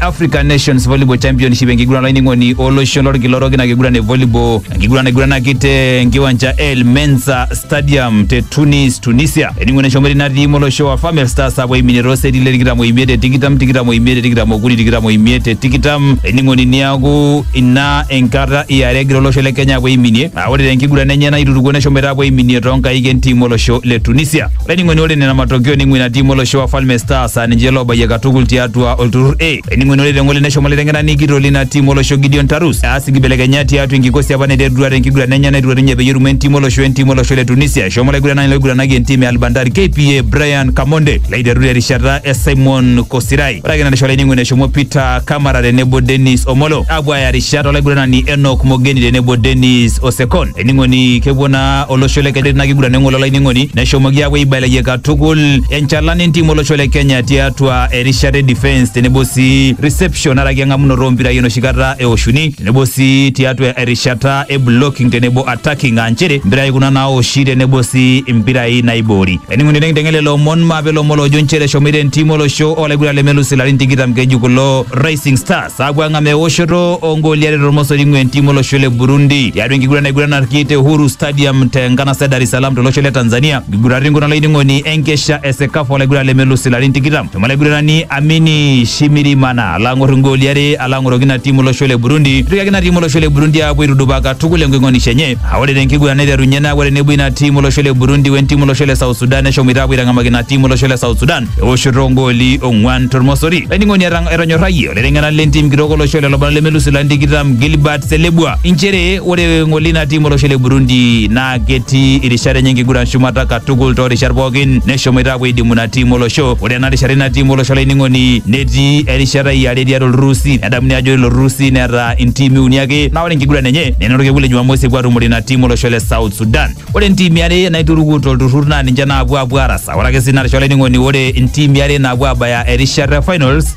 African Nations Volleyball Championship enkiguran olainining'oni olosho lorkila orok ina kiguran e volleyball enkiguran naiguranaki te enkiwanja El Mensa Stadium te Tunis Tunisia eningo neshomo ina tiim olosho wa Famel Stars apuo aiminie tooseti le tikitam oimiet te tikitam tikitam oimiet te tikitam okuni tikitam oimiet te tikitam ening'oni niaku ina enkata iare egira olosho le Kenya apuo aiminie Aa, ore tenkiguran enye naitutukuo neshomoita apuo aiminie toonkaik entim olosho le Tunisia. Olainining'oni ore nena matokeo ning'ua ina tim olosho Wafalme Stars aa ninche loobayie katukul tiatua olturrur A. Olainining'oni ore teng'ole neshomo olaiteng'enani kitok lina tim olosho Gideon Tarus aas nkibelekenyat tiatua enkikosi apa naiterutua tenkiguran enye naiturua ninye peyie erumoo entim olosho entim olosho le Tunisia. Eshomo olaiguranani loiguranaki entim e Al Bandar KPA Brian Kamonde laiteru terishata e Simon Kosirai. Ore ake narisho olainining'oni eshomo Peter Kamara tenebo Dennis Omolo apuo aaya rishat olaiguranani Enoch Mogeni tenebo Dennis Osekon. Ening'oni kepuo naa olosho le Kenya tina kiguran eng'ole olainining'oni neshomoki apuo aibelekeny katukul enchalan entim olosho le Kenya tiatua erishata e defence tenebo sii reception araki eng'amunoto ompirai enoshi kata eoshuni tenebo sii tiatua erishata e blocking tenebo attacking aa nchere mpirai kuna naoshi tenebo sii mpirai naiboori. Ening'uni tenkiteng'ele lomon maape lomon loojo nchere eshomoita entim olosho olaiguran lemelus ilarin tikitam keji kulo Rising Stars aapuo ang'amaa eoshoto ongooli are tormosori ing'ua entim olosho le Burundi tiatua enkiguran naiguranarki te Uhuru Stadium te nkanasa e Dar es Salaam tolosho le Tanzania nkiguratin kuna olainining'oni enkesha e Sekafa olaiguran lemelus ilarin tikitam Shomo laiguranani Amini Shimirimana alo ang'or igooli are alo ang'oroki ina timu olosho le Burundi. Eitoriaki ina timu olosho le Burundi aapuo aitudupaa katukul enking'onisho enye. Aa ore te nkiguran naiterunye naa ore tenebo ina timu olosho le Burundi we ntimu olosho le South Sudan neshomoita aapuo aitang'amaki ina timu olosho le South Sudan eoshoto ogooli ong'uan tormosori. Laining'oni etang- etonyorrayie olaiteng'enani le ntim kitok olosho lelo barnot lemelus ilarin tikitam Gilbert Selebua inchere ore ng'ole ina timu olosho le Burundi naa ketii irishat enye enkiguran shumata katukul toorishat pookin neshomoita aapuo aidimu ina tiim olosho ore ena rishata ina tiim olosho olainining'oni netii erishata iare tiatua olturrusi nedamuni ajo ore ilo turrusi neeta intiimi uni ake naa ore enkiguran enye nena orkekun le jumamosi epuo atumore ina tiim olosho le south sudan ore intiimi are naituruku tolturrur naa ninche naapuo apuo arasa ore ake sii ina rishata olainining'oni ore intiimi are naapuo abaya erishata e finals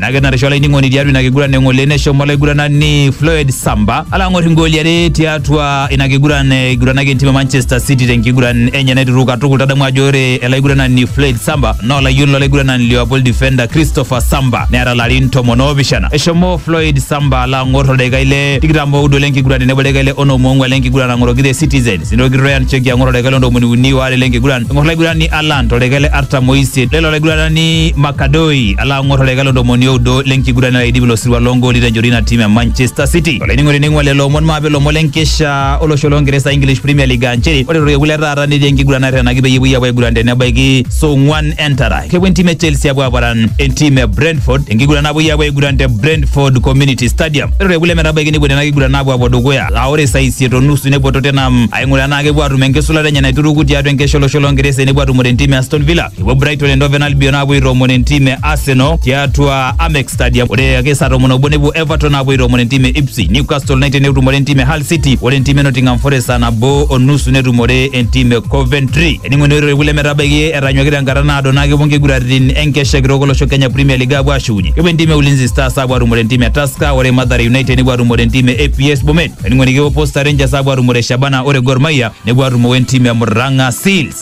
naa kenarisho olainining'oni tiatua ina kiguran eng'ole neshomo olaiguranani Floyd Samba alo ang'or ingooli are tiatua ina kiguran eiguranaki entim e Manchester City tenkiguran enye naiteruru katukul tadamu ajo ore elaiguranani Floyd Samba naa olayioni lolaiguranani Liverpool defender Christopher Samba neeta larin tomon oopishana eshomo Floyd Samba alo ang'or oldaikai le tikitam oudo lenkiguran tenebo oldaikai le onom oong'uan lenkiguran ang'oroki the Citizens nitoki Ryan Cheki ang'or oldaikai le ntomoni uni oare lenkiguran eng'or olaigurani Alan toldaikai le artam oisiet lelo olaiguranani Makadoi Ala ang'or oldaika le ntomoni oudo le nkiguran nalo aidip ilo sirua loo ngooli tenchoto ina tim e Manchester City. Olainining'oni ning'ua lelo omon maape ilomon le nkesha olosho loo Ngeresa English Premier League aa nchere ore torkekun le taata netii enkiguran naterrenaki peyie epuoi aapuo aiguran tenebaiki saa ong'uan entara. Kepuo entim e Chelsea apuo aparan entim e Brentford enkiguran napuoi aapuo aiguran te Brentford Community Stadium. Ore torkekun lemetabaiki nepuo nena kiguran aapuo apuo dukuya aa ore saa isiet o nusu nepuo Tottenham aing'uraa enaa kepuo aatum enkisulata enye naituruku tiatua enkesha olosho loo Ngeresa enepuo atumore entim e Aston Villa. Epuo Brighton Endoven Albion aapuo aitoomon entim e Arsenal tiatua Amex Stadium. Ore ake saa tomon obo nepuo Everton aapuo aitoomon entim e Ipswich. Newcastle United netumore entim e Hull City. Ore entim e Nottingham Forest saa nabo o nusu netumore entim e Coventry. Ening'oni ore kulie metabaiki etanyuaki tenkata naado naa kepuo nkiguraritin enkesha kitok olosho Kenya Premier League aapuo aashukunye. Kepuo entim e Ulinzi Stars aapuo atumore entim e Tusker. Ore Mathare United nepuo atumore entim e APS Bomet. Ening'oni kepuo Posta Rangers aapuo atumore Shabana. Ore Gor Mahia nepuo atumo entim e Murang'a Seals.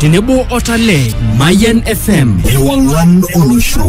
tenebo o Talent. Mayan FM. Ewang'an olosho.